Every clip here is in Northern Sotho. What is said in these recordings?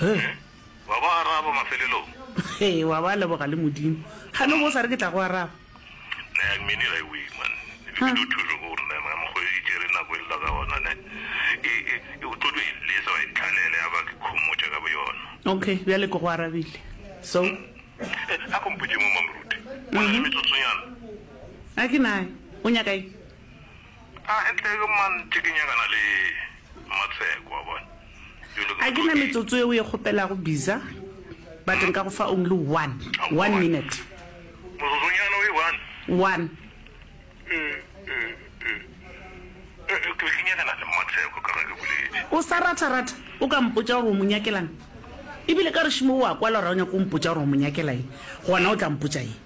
Heh! Wa ba araba mafelelong. Hee, wa ba leboga le Modimo. Ga no bo o sa re ke tla go araba. Nayang mini ga e wee, man. Ebile di o thuso ko gore nama ya mokgoyo e tšere nako e lla ka gona, ne. E, e, e, o tlo tlo e lesa, wa e tlhalela, ya ba ke khomotša ka boyona. Okay, bjale ke go arabile. So? Eh, a ko mpotše mo, Mamoruti. O na le metsotsonyana? A ke naye. O nyaka eng? A ke na metsotso yeo e kgopelago biza but nka go fa only one, one minute. One. O sa ratha ratha o ka mpotša gore o mo nyakela'ng? Ebile ka gešo moo o a kwala gore ga o nyake go mpotša gore o mo nyakela eng, gona o tla mpotša eng?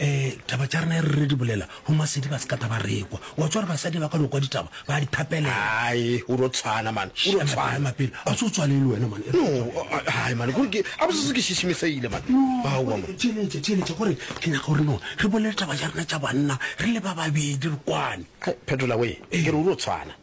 Ee, taba tša rena e re re di bolela go masedi ba se ka taba rekwa. O a tswa gore basadi ba ka no kwa ditaba ba a di thapelela. Ai, o no tshwana man. O no tshwana. Mapele, a se o tswalele wena man. No, ai man, gore ke a bosese ke šešimesegile man. Aowa man. Theeletša, theeletša gore ke nyaka gore no re bolele taba tša rena tša banna re le ba babedi re kwane. Phetola we, ke re o no tshwana.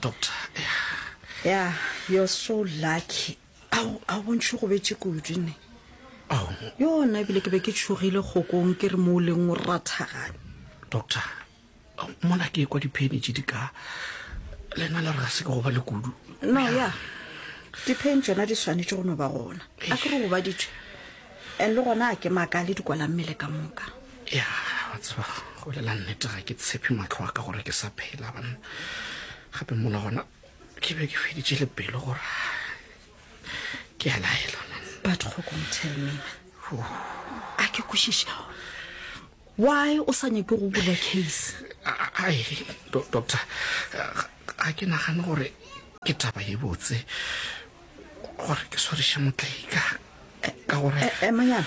Doctor, yeah. Yeah, you're so lucky. Ao, a o bontšhe go betse kudu ne. Ao. Yona ebile ke be ke tshogile kgokong ke re mo o leng o rathagane. Doctor, ao, mona ke kwa dipheni tše di ka lena le re ga se ke go ba le kudu. No, yeah. Dipheni tšona di swanetše go no ba gona. A ke re go ba ditšwe. And le gona a ke makale di kwala mmele ka moka. ya wa tseba go lela nnete ga ke tshepe matlho a ka gore ke sa phela banna gape mola gona ke be ke feditše le pelo gore ke a laela but kgokong tell me a ke kwešiše why o sa nyake go bula case ai do- doctor ga- ga ke nagane gore ke taba ye botse gore ke swariše motlaika ka gore emanyana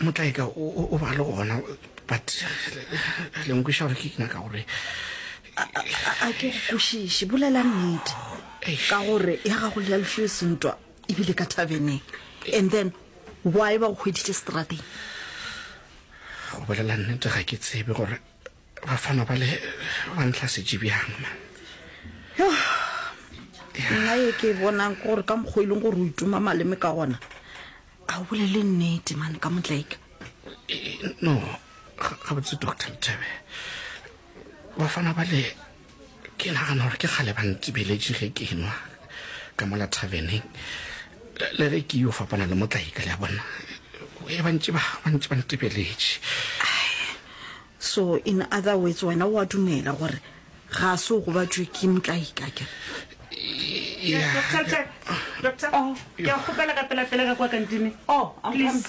Motlaika o, o, o ba le gona, but le nkweša gore ke nyaka gore A, a, a, a ke go kwešiše, bolela nnete. Eish. Ka gore ya gago le ya lefio e sentwa ebile ka thabeneng. And then why ba go hweditše strateng? go bolela nnete ga ke tsebe gore bafana ba le ba ntlhasetše bjang man nna ye ke e bonang ke gore ka mokgwa e leng gore o ituma maleme ka gona a o bolele nnete mane ka motlaika no gabotse doctor mthebe bafana ba le ke nagana gore ke kgale ba ntsibeletše ge ke nwa ka mola thabeneng le ge ke yo fapana le motlaika le a bona e bantši ba bantši ba ntibeletše so in other words wena wa dumela gore ga se o gobatšwe ke motlaika ke ke a kgopela ka pelapela ka kwa kantine oh, please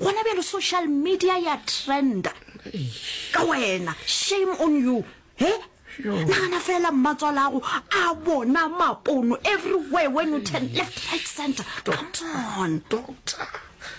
gona bjalo social media ya trenda ka wena shame on you he nagana fela mmatswala ago a bona mapono everywhere when you turn left right center come on doctor